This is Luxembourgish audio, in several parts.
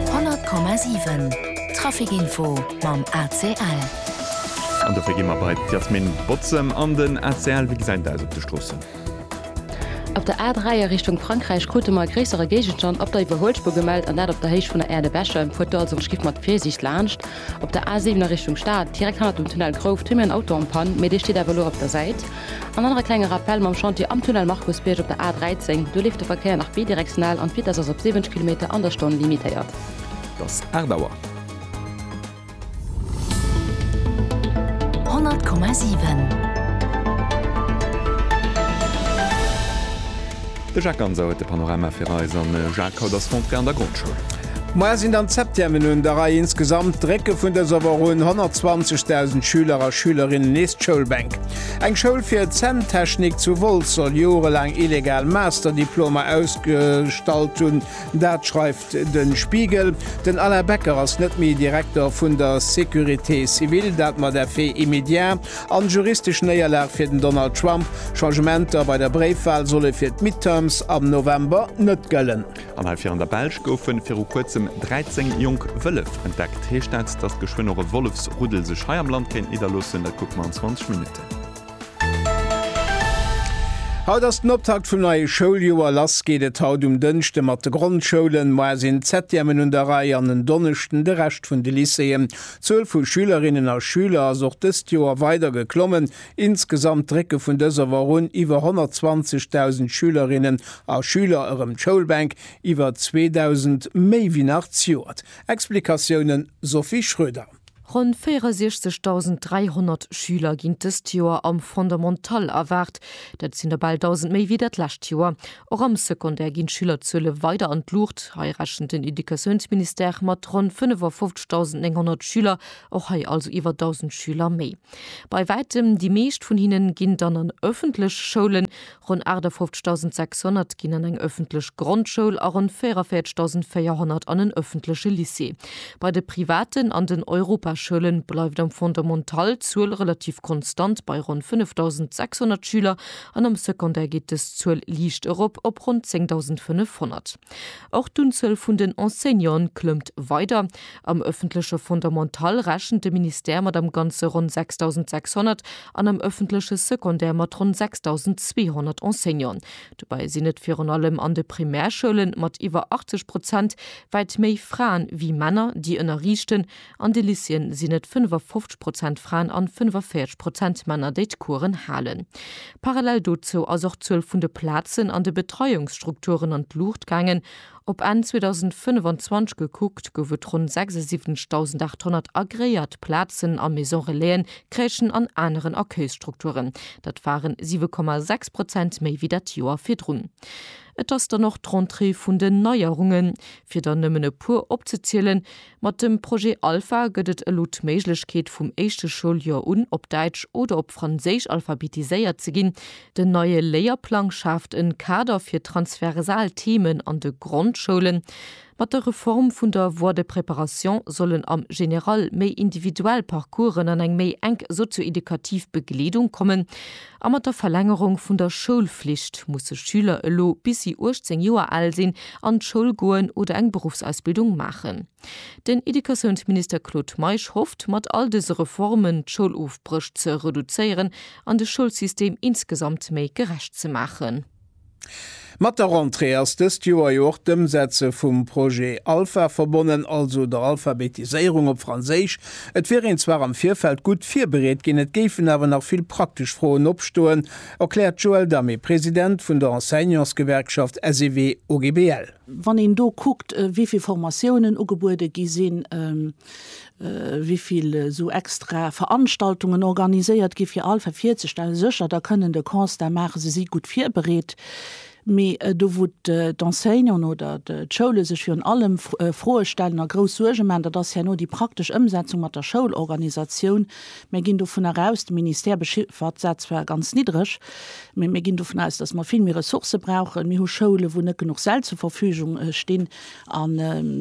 100,7 Trafic-Info mam ACL. An dofir gi mer bei d'Yasmine Bozem an den ACL. Wéi gesäit et aus op de Stroossen? Op der A3 a Richtung Frankräich krute mer e gréissere Géigenstand op der Iwwerhuelspuer gemellt an dat op der Héicht vun der Aire de Bèche. Fuert do also geschifft mat Virsiicht laanscht. Op der A7 a Richtung Stad, direkt hannert dem Tunnel Grouft, hu mir en Auto en Panne, mee dee steet awer elo op der Säit. An dann nach e klenge Rappell mam Chantier am Tunnel Markusbierg op der A 13. Do leeft de Verkéier nach bidirektional an d'Vitess ass op 70 Kilometer an der Stonn limitéiert. Et ass 8 Auer. 100,7. De Jacques Ganser huet de Panorama fir eis an de Jacques haut ass Rentrée an der Grondschoul. Moies sinn dann d'Septièmen un der Rei. Insgesamt drécke vun dëser Woch un 120.000 Schüler a Schülerinnen nees d'Schoulbänk. Eng Schoul fir Zänntechnik zu Wolz soll jorelaang illegal Master-Diplomer ausgestallt hunn. Dat schreift Den Spiegel, Den Alain Becker ass net méi Direkter vun der Sécurité civile, dat mat effet immédiat an juristesch Néierlag fir den Donald Trump. Changementer bei der Bréifwal solle fir d'Midterms am November net gëllen. An heivir an der Belsch goufe viru kuerzem 13 jonk Wëllef entdeckt. Heescht dat, datt geschwënn och e Wollefsruddel sech hei am Land kéint nidderloossen? Dat kucke mer an 20 Minutten. Haut ass den Optakt vum neie Schouljoer. Lass geet et haut um Dënschde mat de Grondschoulen. Moar sinn d'Septièmen un der Rei an en Donneschden de Rescht vun de Lycéeën. D'Zuel vu Schülerinnen a Schüler ass och dëst Joer weider geklommen. Insgesamt drécke vun dëser Woch un iwwer 120.000 Schülerinnen a Schüler erëm d'Schoulbänk, iwwer 2.000 méi wéi nach d'Joert. Explikatiounen, Sophie Schröder. Ronn 64.300 Schüler ginn dëst Joer am Fondamental erwaart. Dat sinn der bal 1.000 méi wéi dat lescht Joer. Och am Secondaire ginn d'Schülerzuele weider an d'Luucht. Hei rechent den Educatiounsministère mat ronn 55.900 Schüler, och hei also iwwer 1.000 Schüler méi. Bei wäitem déi meescht vun hinne ginn dann an ëffentlech Schoulen. Ronn 58.600 ginn an eng ëffentlech Grondschoul a ronn 44.400 an en ëffentleche Lycée. Bei de privaten an den Europaschoule bleift am Fondamental d'Zuel relativ konstant bei ronn 5.600 Schüler an am Secondaire geet dës Zuel liicht erop op ronn 10.500. Och d'Unzuel vun den Enseignanten klëmmt weider. Am ëffentleche Fondamental rechent de Ministère mat am Ganze ronn 6.600 an am ëffentleche Secondaire mat ronn 6.200 Enseignanten. Dobäi sinn et virun allem an de Primärschoulen, mat iwwer 80 Prozent, wäit méi Fraen wéi Männer, déi ënnerriichten. An de Lycéeën sinn et 55 Prozent Fraen an 45 Prozent Männer, déi d'Coursen halen. Parallel dozou ass och d'Zuel vun de Plazen an de Betreiungsstrukturen an d'Luucht gaangen. Op Enn 2025 gekuckt, gouf et ronn 76.800 agreéiert Plazen a Maison Relaisen, Crèchen an aneren Accueilsstrukturen. Dat waren 7,6 Prozent méi wéi dat Joer virdrun. Et ass dann och d'Rentrée vun den Neierungen. Fir der nëmmen e puer opzezielen, Mat dem Projet Alpha gëtt et elo d'Méiglechkeet vum éischte Schouljoer un op Däitsch oder op Franséisch alphabetiséiert ze ginn. Den neie Léierplang schaaft en Kader fir transversal Themen an de Grondschoulen. Mat der Reform vun der Voie de préparation sollen am General méi individuell Parcoursen an eng méi enk sozioedukativ Begleedung kommen. A mat der Verlängerung vun der Schoulflicht musse Schüler elo bis si 18 Joer al sinn an d'Schoul goen oder eng Beruffsausbildung maachen. Den Educatiounsminister Claude Meisch hofft, mat all dëse Reformen d'Schoulofbréch ze reduzéieren an de Schoulsystem insgesamt méi gerecht ze maachen. Mat der Rentrée ass dëst Joer jo och d'Ëmsetze vum Projet Alpha verbonnen, also der Alphabetiséierung op Franséisch. Et wier een zwar am Virfeld gutt virbereet ginn, et géifen awer nach vill praktesch Froen opstoen, erkläert d'Joëlle Damé, President vun der Enseignantsgewerkschaft SEW-OGBL. Wann een do kuckt, wéi vill Formatiounen ugebuede gi sinn, wivill esou extra Veranstaltungen organiséiert gi fir all virzestellen. Sécher, da kënnen de Constat maachen, se si gutt virbereet, mee do wou d'Enseignanten oder d'Schoule sech virun allem Froe stellen a grouss Suerge maachen, dat ass herno déi praktesch Ëmsetzung mat der Schoulorganisatioun. Mir ginn dovunner aus, de Ministère bechiffert dat zwar ganz niddreg, mee mir ginn dovun aus, datt mer vill méi Ressourcë brauchen. Mir hu Schoulen, wou net genuch Säll zur Verfügung stinn. An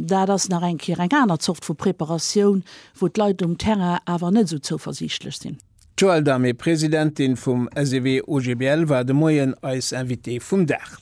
dat ass nach eng Kéier eng aner Zort vu Preparatioun, wou d'Leit um Terrain awer net esou zouversiichtlech sinn. D'Joëlle Damé, Presidentin vum SEW-OGBL, war de Moien eis Invitée vum Dag.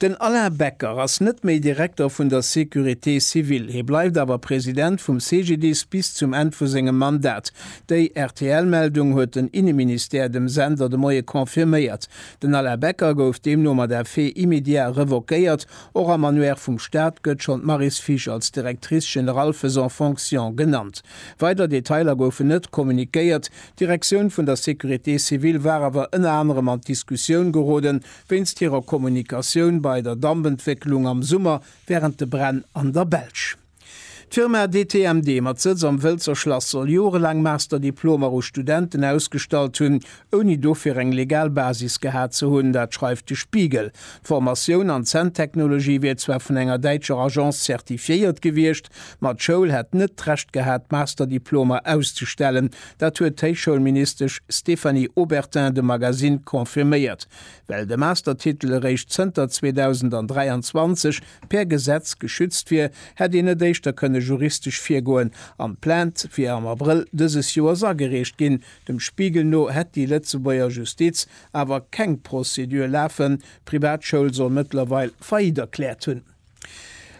Den Alain Becker ass net méi Direkter vun der Sécurité civile. Hie bleift awer President vum CGDIS bis zum Enn vu sengem Mandat. Déi RTL-Meldung huet den Inneministère dem Sender de Moie confirméiert. Den Alain Becker gouf deemno mat effet immédiat revoquéiert, Och am Annuaire vum Staat gëtt schonn d'Maryse Fisch als Directrice générale faisant fonction genannt. Weider Detailer goufen net kommuniquéiert. D'Direktioun vun der Sécurité civile war awer ënner anerem an d'Diskussioun gerode wéinst hirer Kommunikatioun bei der Dampentwécklung am Summer wärend de Bränn an der Belsch. D'Firma DTMD mat Sëtz am Wëlzer Schlass soll jorelaang Master-Diplomer u Studenten ausgestallt hunn, ouni dofir eng legal Basis gehat ze hunn. Dat schreift de Spiegel. D'Formatioun an d'Zänntechnologie wier zwar vun enger däitscher Agence zertifiéiert gewiescht, ma d'Schoul hätt net d'Recht gehat, Master-Diplomer auszustellen. Dat huet d'Héichschoulministesch Stéphanie Obertin dem Magazine confirméiert, well de Master-Titel eréischt zënter 2023 per Gesetz geschützt wier, hätt een net éischter kënne juristesch virgoen. An d'Plainte wier am Abrëll dëses Joers agereecht ginn. Dem Spiegel no hätt déi Lëtzebuerger Justiz awer keng Prozedur lafen. D'Privatschoul soll mëttlerweil Faillite erkläert hunn.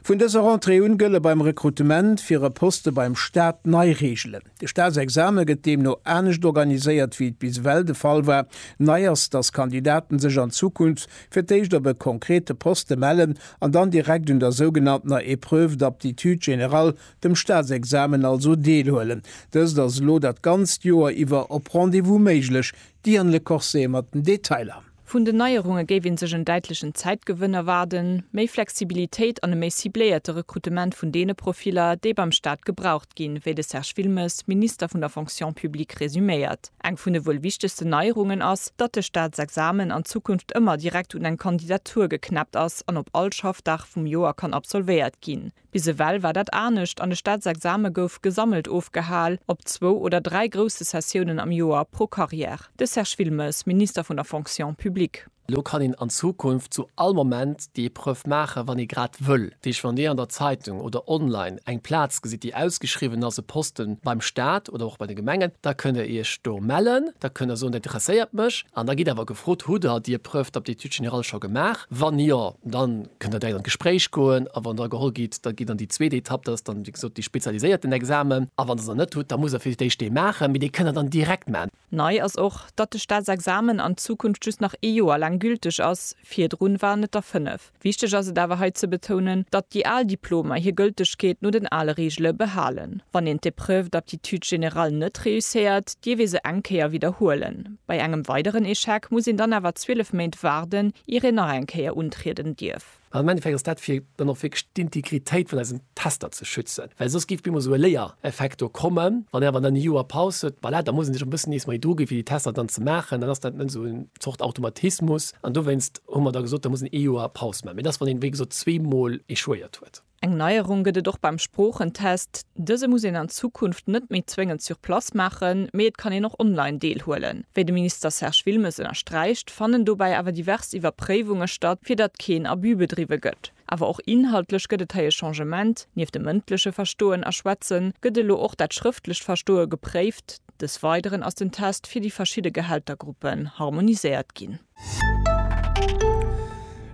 Vun dëser Rentrée un gëlle beim Rekrutement fir e Poste beim Staat nei Reegelen. De Staatsexame gëtt deemno anescht organiséiert wéi et bis ewell de Fall war. Nei ass, dass Kandidaten sech an Zukunft fir d'éischt op e konkrete Poste mellen an dann direkt un der sougenanntener Épreuve d'aptitude générale, dem Staatsexamen also, deelhuelen. Dëst ass elo dat ganzt Joer iwwer op Rendez-vous méiglech. D'Diane Le Corset mat den Detailer. Vun den Neierunge géif ee sech en däitlechen Zäitgewënn erwaarden, méi Flexibilitéit an e méi cibléierte Rekrutement vun deene Profiller, déi beim Staat gebraucht ginn, wéi de Serge Wilmes, Minister vun der Fonction publique resuméiert. Eng vun de wuel wichtegsten Neierungen ass, datt de Staatsexamen an Zukunft ëmmer direkt un eng Kandidatur geknäppt ass an op all Schaffdag vum Joer kann absolvéiert ginn. Bis ewell war dat anescht an de Staatsexame gouf gesammelt ofgehal, op zwou oder dräi grousse Sessiounen am Joer pro Carrière. De Serge Wilmes, Minister vun der Fonction publique. Elo kann een an Zukunft zu all Moment déi Epreuve maachen, wann ee grad wëll. Dat heescht, wann Dir an der Zeitung oder online eng Plaz gesitt, déi ausgeschriwwen ass, e Poste beim Staat oder och bei de Gemengen, da kënnt Der Iech do mellen. Da kënnt Der soen, dat interesséiert mech. An da gitt awer gefrot, Hutt Der déi Epreuve d'aptitude générale scho gemaach? Wann jo, dann. kënnt der direkt an d'Gespréich goen a wann der geholl gitt, da gitt an déi zweet Etapp, dat ass dann, wéi gesot, dee spezialiséierten Examen a wann der se net hutt, da musst der fir d'éischt dee maachen, mee dee kënnt der dann direkt maachen. Nei ass och, datt de Staatsexamen an Zukunft just nach ee Joer laang gülteg ass, virdrun waren et der fënnef. Wichteg ass et awer hei ze betounen, datt déi al Diplomer hir Gëltegkeet no den ale Reegele behalen. Wann een d'Épreuve d'aptitude générale net réusséiert, dierf ee se eng Kéier widderhuelen. Bei engem weideren Echec muss een dann awer 12 Méint waarden, ier een nach eng Kéier untrieden dierf. An am Endeffekt ass dat, fir dann och wierklech d'Integritéit vun eisen Tester ze schützen, well soss géif bemol esou e Léiereffekt do kommen. Wann een awer dann e Joer Paus huet, voilà, da muss ee sech och e bëssen nees méi druginn, fir déi Tester dann ze maachen. Dann ass dat net esou eng Zort Automatismus. An dowéinst hu mer da gesot, da muss een ee Joer Paus maachen. Mee dat ass, wann een, wéi gesot, zweemol échouéiert huet. Eng Neierung gëtt et och beim Sproochentest. Dëse muss een an Zukunft net méi zwéngend sur place maachen, mee et kann een och online deelhuelen. Wéi de Minister Serge Wilmes ënnersträicht, fannen dobäi awer divers Iwwerpréiwunge statt, fir datt keen Abus bedriwwe gëtt. Awer och inhaltlech gëtt et hei e Changement, Nieft dem mëndleche Verstoen a Schwätzen gëtt elo och dat schrëftlecht Verstoe gepréift. Des Weideren ass den Test fir déi verschidde Gehältergruppen harmoniséiert ginn.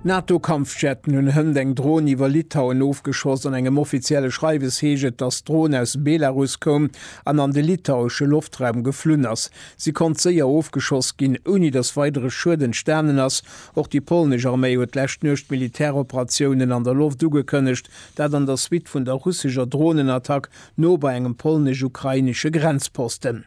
NATO-Kampfjetten hunn hënt eng Dron iwwer Litauen ofgeschoss. An engem offizielle Schreiwes heescht et, datt d'Dron aus Belarus koum an an de litauesche Loftraum geflunn ass. Si konnt séier ofgeschoss ginn, ouni datt weidere Schued entstanen ass. Och déi polnesch Arméi huet d'lescht Nuecht Militäroperatiounen an der Loft ugekënnegt, dat an der Suite vun der russescher Dronenattack no bei engem polnesch-ukrainesche Grenzposten.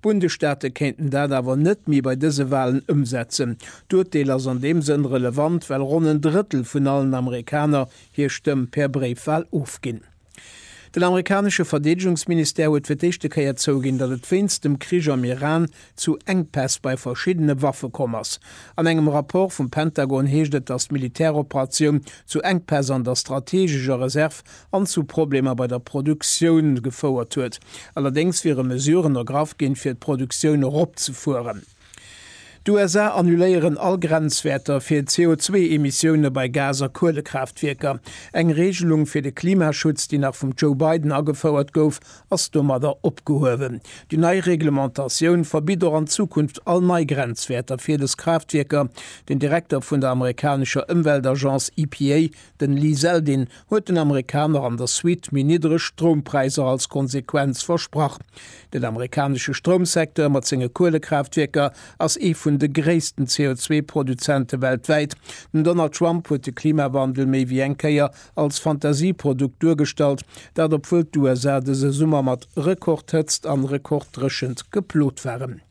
D'Bundesstaate kéinten dat awer net méi bei dëse Walen ëmsetzen. D'Urteel ass an deem Sënn relevant, well ronn en Drëttel vun allen Amerikaner hir Stëmm per Bréifwal ofginn. Den amerikanesche Verdeedegungsministère huet fir d'éischte Kéier zouginn, datt et wéinst dem Krich am Iran zu Enkpäss bei verschiddene Waffe komm ass. An engem Rapport vum Pentagon heescht et, datt d'Militäroperatioun zu Enkpäss an der strateegescher Reserv an zu Problemer bei der Produktioun gefouert huet. Allerdéngs wiere Mesuren ergraff ginn, fir d'Produktioun eropzefueren. D'USA annuléieren all Grenzwäerter fir CO2-Emissioune bei Gas a Kuelekraaftwierker. Eng Reegelung fir de Klimaschutz, déi nach vum Joe Biden agefouert gouf, ass domadder opgehuewen. Déi nei Reglementatioun verbitt och an Zukunft all nei Grenzwäerter fir dës Kraaftwierker. Den Direkter vun der amerikanescher Ëmweltagence EPA, Den Lee Zeldin huet den Amerikaner an der Suite méi niddreg Stroumpräisser als Konsequenz versprach. Den amerikanesche Stroumsecteur mat senge Kuelekraaftwierker ass ee vun de gréissten CO2-Produzente weltwäit. Den Donald Trump huet de Klimawandel méi wéi eng Kéier als Fantasieprodukt duergestallt, dat obwuel d'USA dëse Summer mat Rekordhëtzt an Rekorddréchent geplot waren.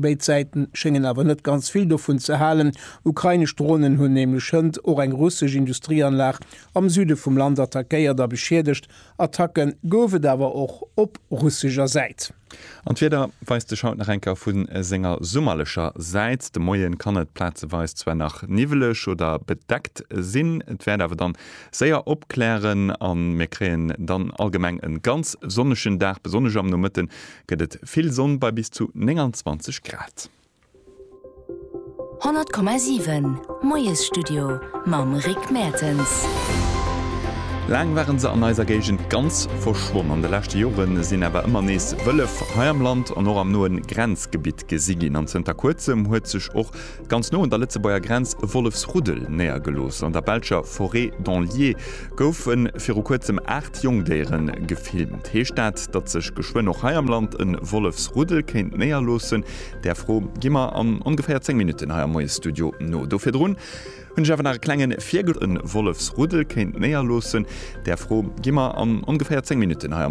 Béid Säiten schéngen awer net ganz vill dovun ze halen. Ukrainesch Dronen hunn nämlech hënt och eng russesch Industrieanlag am Süde vum Land attackéiert a beschiedegt. Attacke gouf et awer och op russescher Säit. An d'Wieder weist sech haut nach eng Kéier vu senger summerlecher Säit. De Moie kann et plazeweis zwar nach niwweleg oder bedeckt sinn, et wäert awer dann séier opklären a mir kréien dann allgemeng e ganz sonnegen Dag. Besonnesch am Nomëtte gëtt et vill Sonn bei bis zu 29 Grad. 100,7 Moiesstudio mam Rick Mertens. Laang waren se an eiser Géigend ganz verschwonn. An de leschte Jore sinn awer ëmmer nees Wëllef hei am Land an och am noe Grenzgebitt gesi ginn. An zënter Kuerzem huet sech och Ganz no un der Lëtzebuerger Grenz e Wollefsruddel néiergelooss. An der belscher Forêt d'Anlier goufe viru kuerzem aacht Jongdéiere gefilmt. Heescht dat, datt sech geschwënn och hei am Land e Wollefsruddel kéint néierloossen? Där Fro gi mer an ongeféier zéng Minutten hei am Moiesstudio no. Do virdrun hunn ech awer nach e klengen Virgl. E Wollefsruddel kéint néierloossen. Där Fro gi mer an ongeféier zéng Minutten hei am.